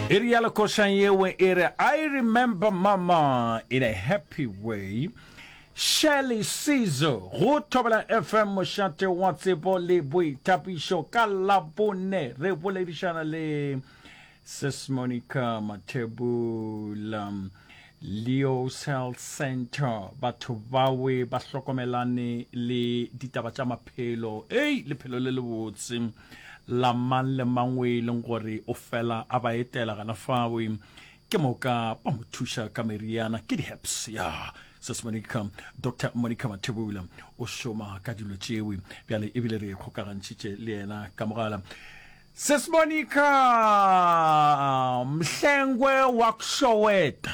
E rialo košang yewe e re I remember mama in a happy way. Shirley Sizo go Thobela FM mošate wa tsebo le boithapišo ka Labone re boledišana le Sis Monica Mathebula Leo's Health Center batho bawe ba hlokomelane le ditaba tša maphelo ei lephelo le lebotse la mang le mang o e leng gore o fela a ba etela gana fao ke moka ba mo thuša ka meriana ke di-herbs ya sis monica doctor monica mathebula o šoma ka dilo tšewe bjale ebile re kgokagantšhitše le yena ka mogala sis monica mhlengwe wa kshoweta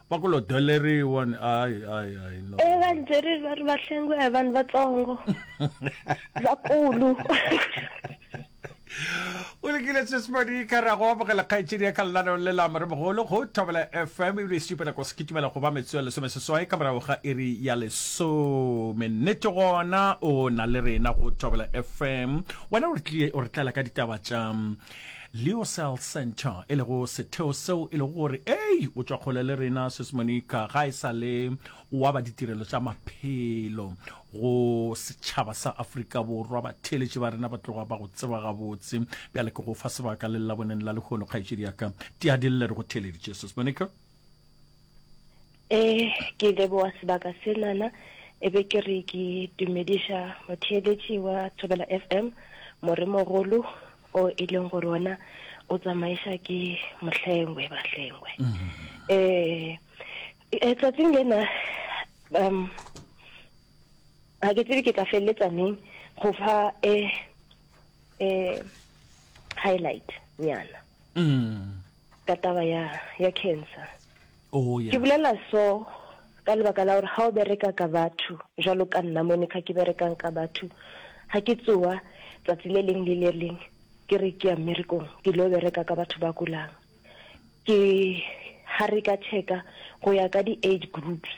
va ku lo doleriwa ni ai ai ai no e va byeri va ri va hlengiwa hi vanhu vatsongo vakulu o lekile sesmadi ka ra go amogela kgaetšedi ya kalelano le lama re mogolo go thobela fm ebile e sepela ko se ke tumela go ba metso ya lesome seswai ka morago ga iri ya lesome nnete gona o na le rena go thobela fm wena o re tlie o re tlela ka ditaba tša Lyocell Centre, e lego setheo seo e lego gore ei o tšwa kgole le rena Sis Monica ga e sa le wa ba ditirelo tša maphelo go setšhaba sa Afrika Borwa. Batheeletši ba rena ba tloga ba go tseba gabotse. Bjale ke go fa sebaka le llaboneng la lehono, kgaetšedi ya ka Tiadille re go theeleditše Sis Monica. E, ke leboa sebaka senana e be ke re ke dumediša motheeletši wa Thobela FM moremogolo o e leng gore ona o tsamaiša ke mohlengwe bahlengwe um mm-hmm. eh, eh, tsatsing lena um ga ke tsebe ke tla feleletsa neng go fa um highlight nyana mm. ka taba ya ya cancer oh, yes. ke bulela so ka lebaka la gore ga o bereka ka batho jalo ka nna mone kha ke berekang ka batho ga ke tsoa tsatsi le leng le le leng ke re ke ya mmerekong ke lo bereka ka batho ba kulang ke ga re ka checka go ya ka di-age groups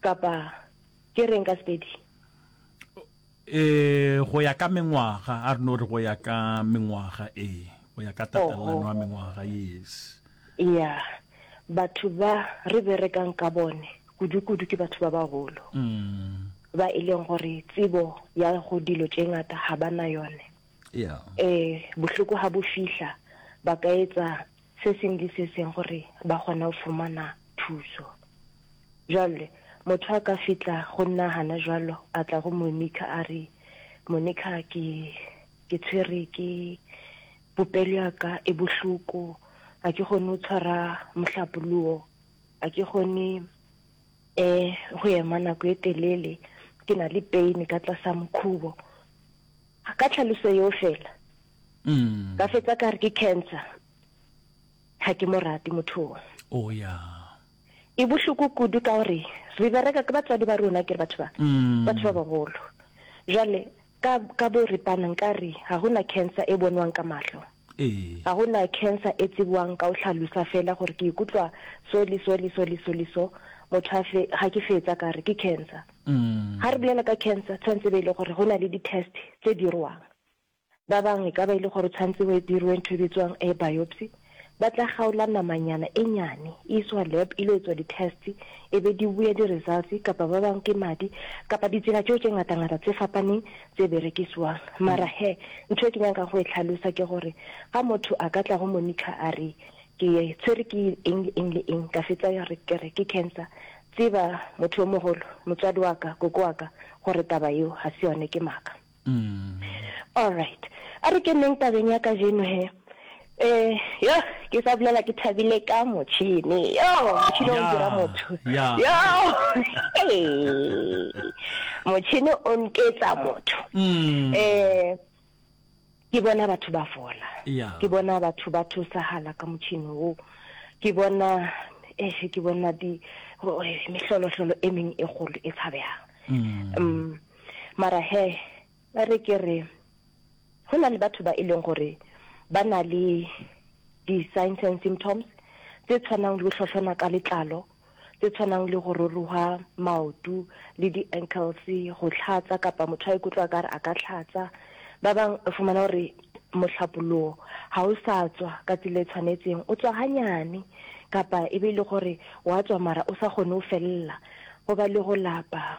kapa ke reng ka sepedi Ee, go ya ka mengwaga, a re no re go ya ka mengwaga, ee, go ya ka tatelelano ya mengwaga, yes. Ya, batho ba re berekang ka bone kudu-kudu ke batho ba bagolo, ba e leng gore tsebo ya go dilo tše ngata ga ba na yone. Ee, bohloko ga bo fihla, ba ka etsa se sengwe le se sengwe gore ba kgone go fumana thuso. Bjale, motho a ka fihla go nna gana jwalo, a tla go Monika a re, Monika, ke, ke tshwere ke, popelo ya ka e bohloko, ga ke kgone go tshwara mohlapologo, ga ke kgone um go ema nako e telele, ke na le pain ka tlasa mokhubo. A ka tlhaloso yeo fela. Mm. Ka fetsa ka re ke cancer. Ha ke mo rate motho o. O oh, ya. E bohloko kudu ka gore re bereka ke batswadi ba rona ke batho ba. Mm. Batho ba bagolo. Jwale ka ka bo re panang ka re ha hona cancer e bonwang ka mahlo. Ee. Ga go na cancer e tsebwang ka go hlalosa fela gore ke ikutlwa so le so le so le so le so, motho a fe, ga ke fetsa ka re ke cancer. Ga re bolela ka cancer, tshwanetse be e le gore go na le di-test tse dirwang. Ba bang e ka ba e le gore tshwanetse go dirwe ntho e bitswang a biopsy, ba tla kgaola namanyana e nyane, e iswa lab e ile etswa di-test, e be di boya di-results, kapa ba bang ke madi, kapa ditsela tšeo tše ngata-ngata tse fapaneng tše berekiswang. Mara he, ntho e ke nyakago go e hlalosa ke gore ga motho a ka tla go monitor a re ke tshwere ke eng le eng le eng, ka fetsa ya re ke re ke cancer, tseba motho yo mogolo, motswadi wa ka, koko wa ka, gore taba yeo ga se yone, ke maaka. Alright, a re keneng tabeng ya kajeno he, Eh yoh ke sa bolela ke thabile ka motšhini yoh motšhini o dira motho yoh motšhini o nketsa motho mm. eh ke bona batho ba fola ke bona batho ba thusahala ka motšhini o ke bona eh ke bona di eh, mehlolohlolo e meng e golo e tshabegang mm. um mara he Ba re ke re, go na le batho ba e leng gore ba na le di-signs and symptoms tse tshwanang le go hlohlona ka letlalo, tse tshwanang le go roroga maoto le di-ankles, go tlhatsa kapa motho a ikutlwa ka re a ka tlhatsa. Ba bang o fumana gore mohlapologo ga o sa tswa ka tsela e tshwanetseng, o tswa ganyane kapa e be e le gore wa tswa mara o sa kgone go felela, go ba le go lapa.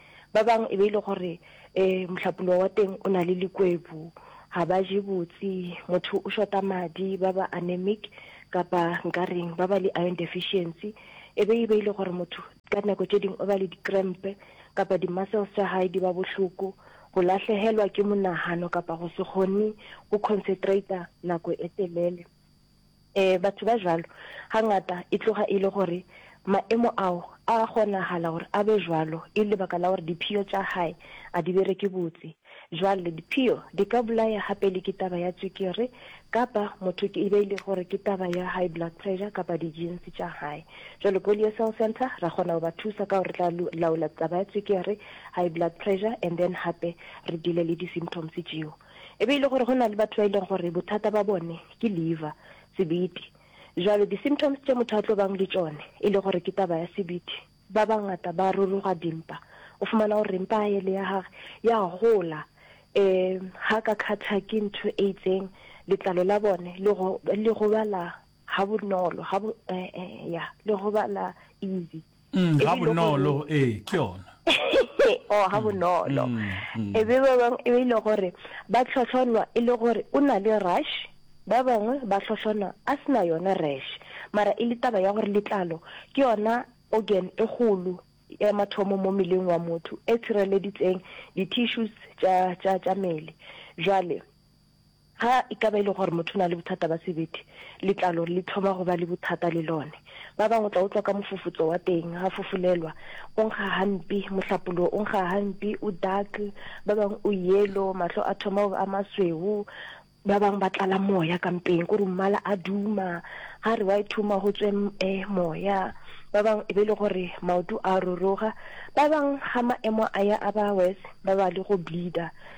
Ba bang e be e le gore um mohlapoloa wa teng o na le likwebu, ga ba je botse, motho o shota madi, ba ba anemic kapa nka reng ba ba le iron deficiency. E be e be e le gore motho ka dinako tše dingwe o ba le di-cramp kapa di-muscles tša gae di ba bohloko, go lahlegelwa ke monagano kapa go se kgone go concentrator nako e telele. E, batho ba jalo gangata e tloga e le gore maemo ao a kgonagala gore a be jalo e lebaka la gore diphio tša gae a di bereke botse. Jwale diphio di ka bolaya gape le ke taba ya tswekere kapa motho ke e be e le gore ke taba ya high blood pressure kapa dijinsi tša gae. Jwale Polio Cell Centre ra kgona go ba thusa ka gore re tla laola taba ya tswekere, high blood pressure and then gape re dile le di-symptoms tšeo. E be e le gore go na le batho ba e leng gore bothata ba bone ke liver, sebete. Jwale di-symptoms tše motho a tlo bang le tšone e le gore ke taba ya sebete, ba bangata ba ruruga dimpa. O fumana gore mpa ya ele ya gage ya gola, um ga ka kgathwa ke ntho e itseng, letlalo la bone le go le gobala ha bonolo, ha bo, um ya le gobala easy. Mm, ga bonolo ee ke yona o oh, ga mm, bonolo mm, mm. e be ba bangwe e be ile gore ba tlhotlhonwa e le gore o na le rush ba bangwe ba tlhotlhonwa a sena yona rash mara e le taba ya gore letlalo ke yona organ e golo ya mathomo mo meleng wa motho e tshireleditseng di-tissues tša mele jwale Ga e ka ba e le gore motho o na le bothata ba sebete, letlalo le thoma go ba le bothata le lone. Ba bangwe o tla utlwa ka mofufutso wa teng, ga fufulelwa, o nkga gampi, mohlapologo o nkga gampi, o dark, ba bangwe o yellow, mahlo a thoma go ba a masweu, ba bangwe ba tlala moya ka mpeng, kore mmala a duma, ga re wa e thuma go tswe eh, moya. Ba bangwe e be e le gore maoto a roroga, ba bangwe ga maemo a ya a ba worse, ba ba le go bleeder.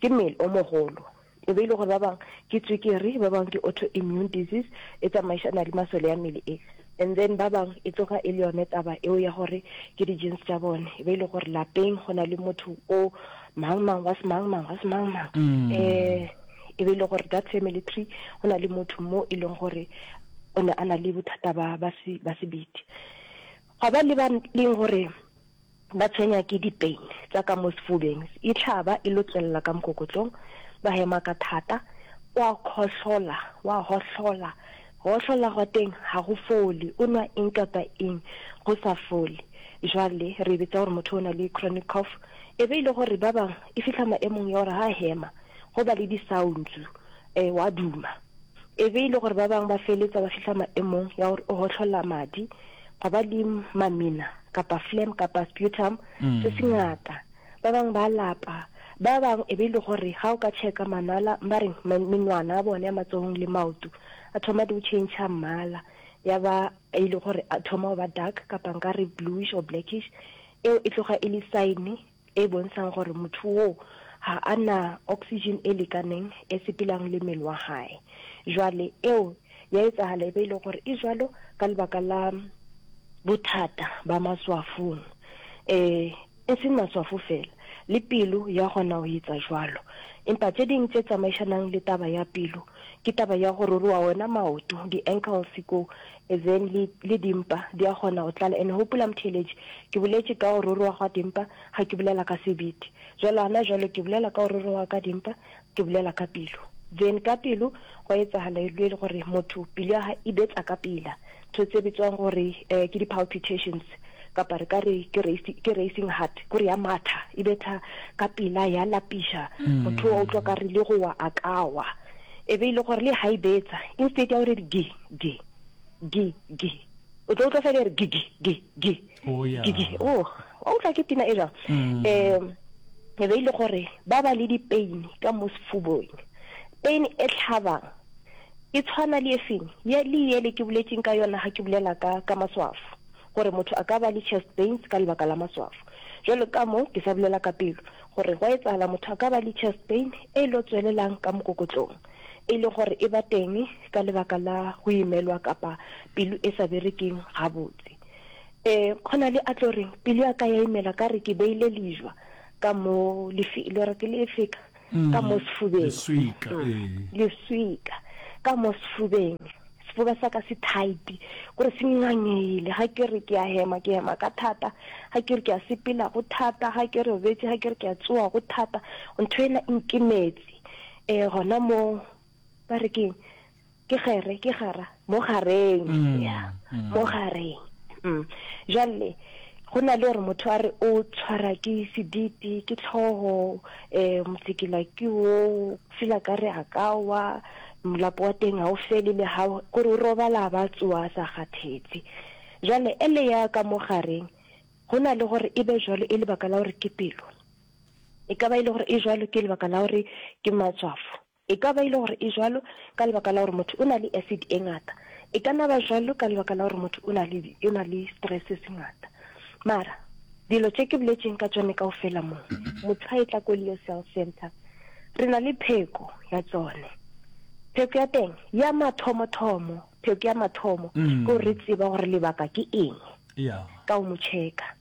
Ke mmele o mogolo. E be e le gore ba bang ke tswekere, ba bang ke autoimmune disease e tsamaišana le masole ya mmele e. And then ba bang e tloga e le yone taba eo ya gore ke di-genes tša bone. E be e le gore lapeng go na le motho o mang mang wa semang mang wa semang mang. Eh, e be e le gore that family tree go na le motho mo e leng gore o ne a na le bothata ba ba se ba sebete. Gwa ba le ba leng gore Ba tshwenya ke dipein tsa ka mo sefubeng, e hlaba e lokelela ka mokokotlong, ba hema ka thata, wa khohlola, wa hohlola, go hohlola gwa teng ga go fole, o nwa eng kapa eng go sa fole. Jwale re e bitsa gore motho o na le chronic cough. E be e le gore ba bang e fihla maemong ya gore ha hema go ba le disaontsu, um wa duma. E be e le gore ba bangwe ba feletsa ba fihla maemong ya gore o gotlhola madi ga ba le mamina kapa phlegm kapa sputum mm. se se ngata ba bangwe ba lapa ba bangwe e be e le gore ga o ka checka manala ba re menwana a bone ya matsogong le maoto a thoma di o change mmala ya ba e le gore a thoma go ba dark kapa nka re bluish or blackish eo e tloga e le sign e bontšhang gore motho woo ga a na oxygen e lekaneng e sepelang le mmele wa gae. Jwale eo ya etsagala e be e le gore e jwalo ka lebaka la bothata ba maswafong. E, e seng maswafo fela, le pelo ya kgona go etsa jwalo. Empa tše ding tše tsamaišanang le taba ya pelo ke taba ya go ruruwa wena maoto, di-ankles ko, and then le, le dimpa di a kgona go tlala and gopola motheeletši ke boletše ka go roroga gwa dimpa ga ke bolela ka sebete jalo gana jalo ke bolela ka go roroga ka dimpa ke bolela ka pelo then ka pelo go etsagala e le gore motho pelo ya ga e betsa ka pela ntho tse bitswang gore um ke di-palpitations kapa re ka re ke racing heart kore ya matha e betha ka pela ya lapiša mm. motho wa utlwa ka re le gowa a kawa e be e le gore le ga e betsa instead ya gore di gi gi gi o tlo utlwa fela e re gi gi gi gi oh, gi gi o oh, wa utlwa ke pina e jang um mm. e be e le gore ba ba le dipain ka mo sefubong pain e tlhabang e tshwana le efeng ye le ye le ke boletseng ka yona ga ke bulela ka ka maswafo gore motho a ka ba le chest pains ka lebaka la maswafo jalo ka mo ke sa bulela ka pelo gore go etsala motho a ka ba le chest pain e lo tswelelang ka mokokotlong e le gore e ba teng ka lebaka la go imelwa kapa pelo e sa berekeng gabotse. E, go na le a tlo reng pelo ya ka ya imela ka re ke beile lejwa ka mo le re ke le efeka mm, ka mo sefubeng leswika, mm, ee. leswika ka mo sefubeng sefuba sa ka se tight gore se ngangele ga ke re ke a hema ke hema ka thata ga ke re ke a sepela go thata ga ke re obetse ga ke re ke a tsoa go thata ntho ena e nkemetse e gona mo ba re keng ke gere ke gara mo gareng mm, ya mm. mo gareng mm. jale go na le gore motho a re o tshwara ke sediti ke tlhogo um motsekela ke o fela ka re a ka wa molapo wa teng ga o fele le ga gore o robala ba tsoa sa kgathetse jale ele ya ka mo gareng go na le gore e be jalo e lebaka la gore ke pelo E ka ba e le gore e jwalo ke lebaka la gore ke matswafo. E ka ba e le gore e jwalo ka lebaka la gore motho o na le acid e ngata. E ka na ba jwalo ka lebaka la gore motho o na le, o na le stress se ngata. Mara dilo tše ke boletšeng ka tšone ka ofela mo motshwa e tla ko Leo Cell Center re na le pheko ya tsone pheko ya teng ya mathomo-thomo pheko ya mathomo mm. ko re tseba gore lebaka ke eng yeah. ka o mo checka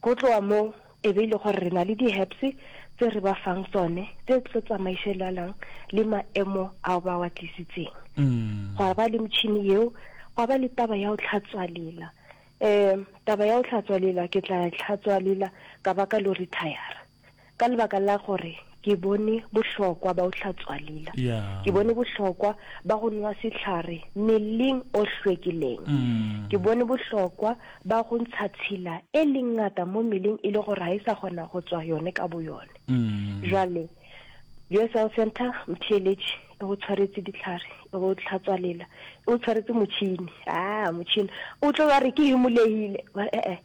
Go tloga moo, e be e le gore re na le di-herbs tse re ba fang tsone tse di tlo tsamaišelelang le maemo ao ba wa tlisitseng. Gwa ba le motšhini yeo, gwa ba le taba ya go tlhatswa lela. Um taba ya go tlhatswa lela, ke tla tlhatswa lela ka ba ka lo retire. ka lebaka la gore ke bone bohlokwa ba o hlatswa lila ke bone bohlokwa ba go nwa sehlare meleng o hlwekileng ke bone bohlokwa ba go ntsha tshila e leng ngata mo meleng e le gore ga e sa kgona go tswa yone ka bo yone jwale USL Center mtheletše e go tshwaretse ditlhare e go tlhatswa lela e go tshwaretse motšhini a motšhini o tlo ba re ke imolehile e-e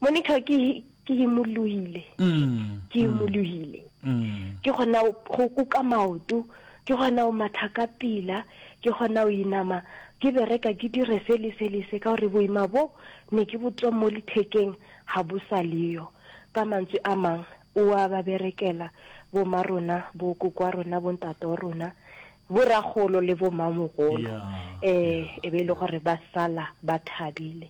Monica ke ke himolohile mm, ke himolohile mm, mm. ke gona go kuka maoto ke gona go matha ka pila ke gona go inama ke bereka ke dire se le se le se ka gore boima bo ne ke botswa mo lethekeng ga bo sa leyo ka mantswe a mang o a ba berekela boma rona bo kokwa rona bo ntate wa rona boragolo le bomamogolo um e be e le gore ba sala ba thabile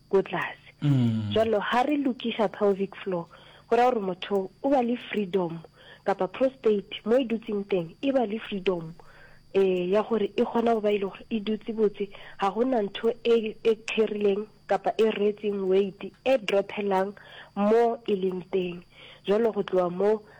ko tlase jalo ha re lokiša pelvic floor go ra gore motho o ba le freedom kapa prostate mo e dutseng teng e ba le freedom eh ya gore e kgona go ba ile e gore e dutse botse ga gona ntho e e kherileng kapa e retseng weight e drophelang mo e leng teng jalo go tloa mo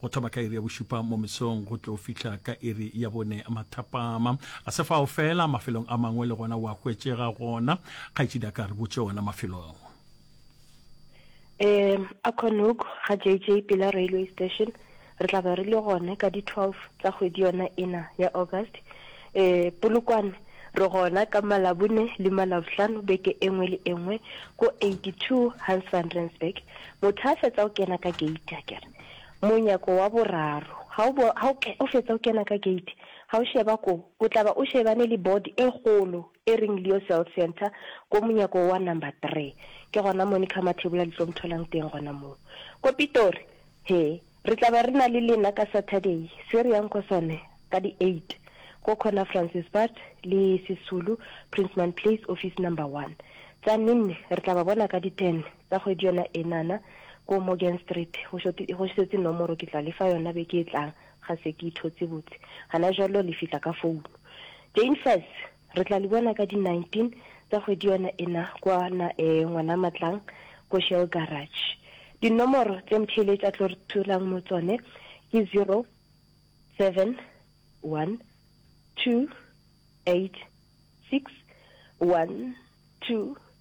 Go thoma ka iri ya bošupa mo mesong go tlo fihla ka iri ya bone mathapama. Ga se fao fela, mafelong a mangwe le gona wa hwetšega gona. Kgaetšedi a ka re botše ona mafelo ao. Um, a Konuk, ga JJ pela railway station, re tla ba re le gone ka di 12 tsa kgwedi yona ena ya August. Um, Polokwane, re gona ka Malabone le Malabohlano beke e nngwe le e nngwe ko 82 Hans van Rensburg. Motho a fetsa go kena ka gate, a kere Monyako wa boraro. Ha o, ha o, o fetsa o kena ka gate, ha o šeba ko, o tla ba o šebane le board e kgolo e reng Leo Cell Centre ko monyako wa number three. Ke gona mo Monica Mathebola le tlo mo tholang teng gona moo. Ko Pitori, he, re tla ba re na le lena ka Saturday se re yang ko sone ka di eight ko corner Francispad le Sisulu, Princeman Place, office number one. Tsa Ninne re tla ba bona ka di ten. Ka kgwedi yona enana, ko Morgan Street, go šoti, go šetše nomoro, ke tla le fa yona beke e tlang, ga se ke e thotse botse. Gana jwalo le fihla ka founo. Jane Faz, re tla le bona ka di 19 tsa kgwedi yona ena kwa na, ee, Ngwanamatlang, ko Shell Garage. Dinomoro tše Mtheeletša a tlo re tholang mo tsone ke 07128612.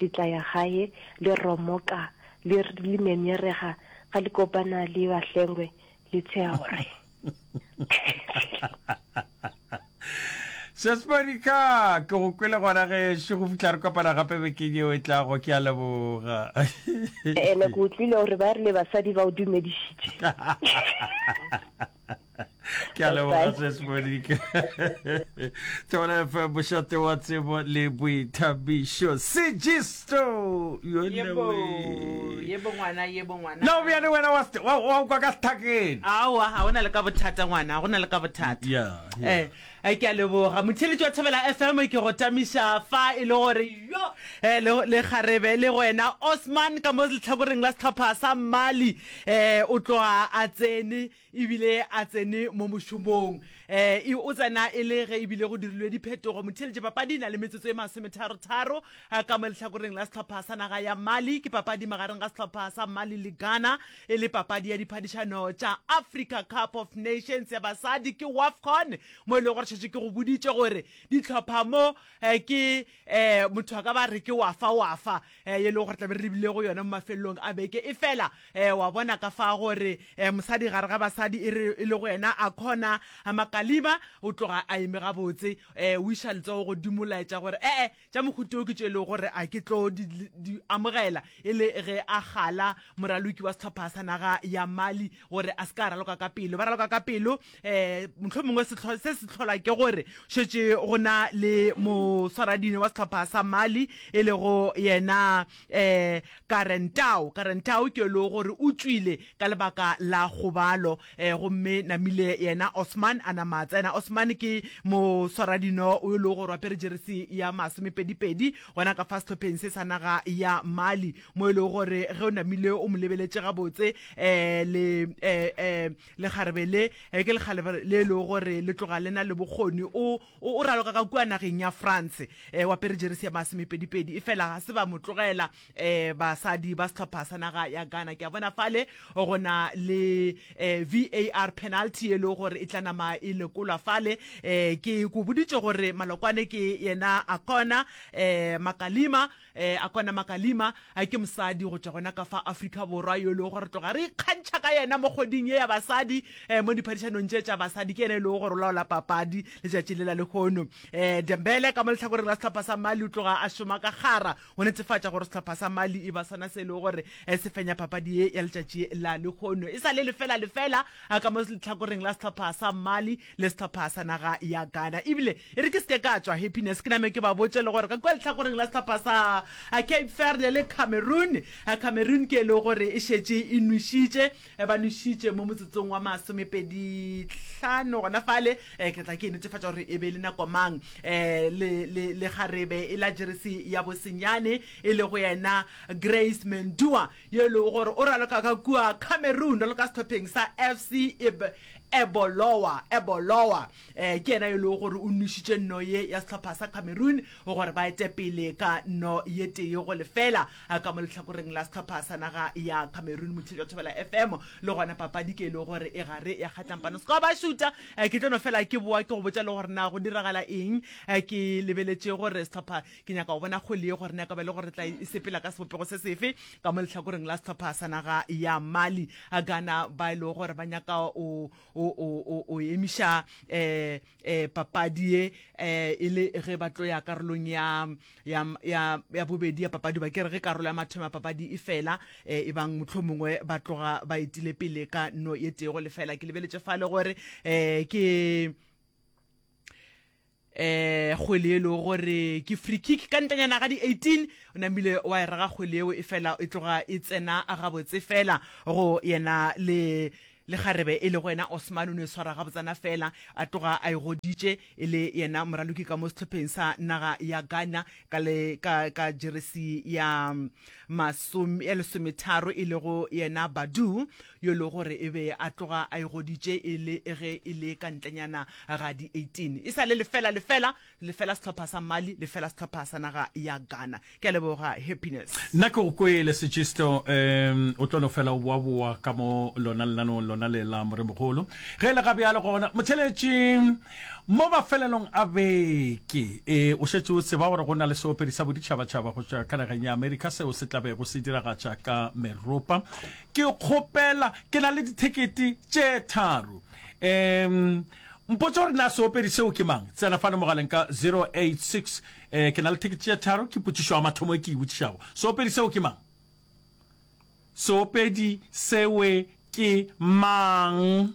Le tla ya gae, le romoka, le, le nyenyerega, ga le kopana le bahlengwe, le tsheya gore. Sesbari ka, ke go kwele gona gešo, go fihla re kopana gape bekeng yeo e tlago, ke a leboga. Ene ke utlwile gore ba rile basadi ba o dumedišitše. ke a leboga ses monika tona fa bošate wa tsebo le boithabišo segisto na o bjane wena wa kwa ka sethakeng aowa ga o na le ka bothata ngwana go na le ka bothata yeah, yeah. Eh, Ke a leboga motheletši wa Thobela FM, ke go tamiša fa e le gore yo le le kgarebe le wena Osman ka mo letlhakoreng la sehlopha sa Mali o tloga a tsene ebile a tsene mo mošomong o tsena e le ge ebile go dirilwe diphetogo. Motheletši, papadi e na le metsotso e masometharo-tharo ka mo letlhakoreng la sehlopha sa naga ya Mali. Ke papadi magareng ga sehlopha sa Mali le Ghana E le papadi ya diphadišano tša Africa Cup of Nations ya basadi ke Wafcon mo e lego gore šetše ke go boditše gore dihlopha mo eh, ke eh, motho a ka ba re ke wafa wafa eh, ye e lego gore tlabe re lebile go yona mo mafelelong a beke e fela eh, wa bona ka fa gore eh, mosadi gare ga basadi e, e le go yena a khona makalima o tloga a eme gabotse eh, o iša letsogo godimo laetša gore ee eh, eh, Tša mohuta wo ke tšo e lego gore a ke tlo di, di amogela e le ge a gala moraloki wa sehlopha sa naga ya Mali gore a se ka raloka ka pelo. Ba raloka ka pelo um mohlomongwe sehlo, se se hlola ke gore šetše go na le moswaradino wa sehlopha sa Mali e lego yena um Karentao. Karentao ke yo e lego gore o tšwile ka lebaka la kgobalo. Eh, gomme namile yena osman a nama a tsena osman ke moswaradino o e lego gore wa pere jeresi ya masomepedipedi gona ka fa sehlopheng se sa naga ya mali mo e lego gore ge o namile o mo lebeletše gabotse um le um lekgarebe le eh, ke lekgarebe le e lego gore le tloga le na le bokgoni o o raloka ka kua nageng ya france um wa pere jeresi ya masomepedipedi e fela ga se ba mo tlogela um basadi ba setlhopha sa naga ya ghana ke a bona fale go na le um var penalty e lego gore e tla nama e lekolwa fale um ke ko boditše gore malokwane ke yena a kona um makalima um a kona makalima a ke mosadi go tšwa gona ka fa afrika borwa yo e lego gore tloga re ikgantšha ka yena mo kgoding ye ya basadi um mo diphadišanong tše tša basadi ke yena e lego gore o laola papadi letšatši le la lehono um dembele ka mo letlhakoreng la setlhopha sa mali o tloga a šoma ka gara go netefatša gore sehlopha sa Mali e ba sona se e lego gore eh, se fenya papadi ye ya letšatši la lekgono e sa le lefela lefela a ka mo letlhakoreng la sehlopha sa Mali le sehlopha sa naga ya Ghana ebile e re ke seke ka tswa happiness ke name ke ba botše le gore ka kwa letlhakoreng la sehlopha sa eh, Cape Verde le Cameroon eh, Cameroon ke e lego gore e šetše e nwešitše ba nwešitše mo motsotsong wa masomepedihlano gona fale um ke tla ke e netefatša gore e be e le nako mang um le kgarebe e la jeresi ya bosenyane e le go yena grace mendua yo e lego gore o raloka ka kua cameroon raloka sethopheng sa fc ebolowa ebolowa um ke yena yo e lego gore o nošitše nno ye ya sehlopha sa cameroon gore ba ete pele ka nno ye tee go lefela ka mo lehlakoreng la sehlopha sa naga ya cameroon motšhedi wa thobela fm le gona papadi ke e lego gore e gare ya kgatlampano seka ba šuta ke tlo no fela ke boa ke go botša le gore na go diragala eng ke lebeletše gore sehlopha ke nyaka go bona kgole ye gore na ka ba le gore tla e sepela ka sebopego se sefe ka mo lehlakoreng la sehlopha sa naga ya mali gana ba e lego gore ba nyaka o o o o o emiša eh eh papadi ye eh e le ge ba tlo ya karolong ya ya ya ya bobedi ya papadi ba kere ge karolo ya mathomo ya papadi e fela eh e bang mohlomongwe ba tloga ba etile pele ka no ye tego le fela ke lebeletše fa le gore eh ke um kgwele yele o gore ke free kick ka ntlenyana ga di 18 o namile wa e rega kgwele yeo e fela e tloga e tsena gabotse fela go yena le le kgarebe e le go yena Osman o ne swara gabotsana fela a tloga a e goditše e le yena moraloki ka mo sehlopheng sa naga ya Ghana ka le ka ka jeresi ya masome ya lesometharo e le go yena Badu yo e lego gore e be a tloga a e goditše e le ge e le ka ntlenyana ga di 18 e sa le lefela lefela lefela sehlopha sa Mali lefela sehlopha sa naga ya Ghana. Ke a leboga Happiness. Nna ke go kwele Segisto, um o tlo no fela o boaboa ka mo lona lenanong lona le la Moremogolo. Ge e le ga bjalo gona, motheletši, mo mafelelong a beke e, o šetše o tseba gore go na le seopedi sa boditšhabatšhaba go tšwa ka nageng ya Amerika seo se tla bego se diragatša ka meropa Ke kgopela, ke na le dithekete tše tharo. Um, mpotša gore na seopedi seo ke mang. Tsena fane mogaleng ka 086. Um, ke na le thekete tše tharo. Ke potšišo ya mathomo e ke e botšišago. Seopedi seo ke mang? Seopedi sewe ke mang?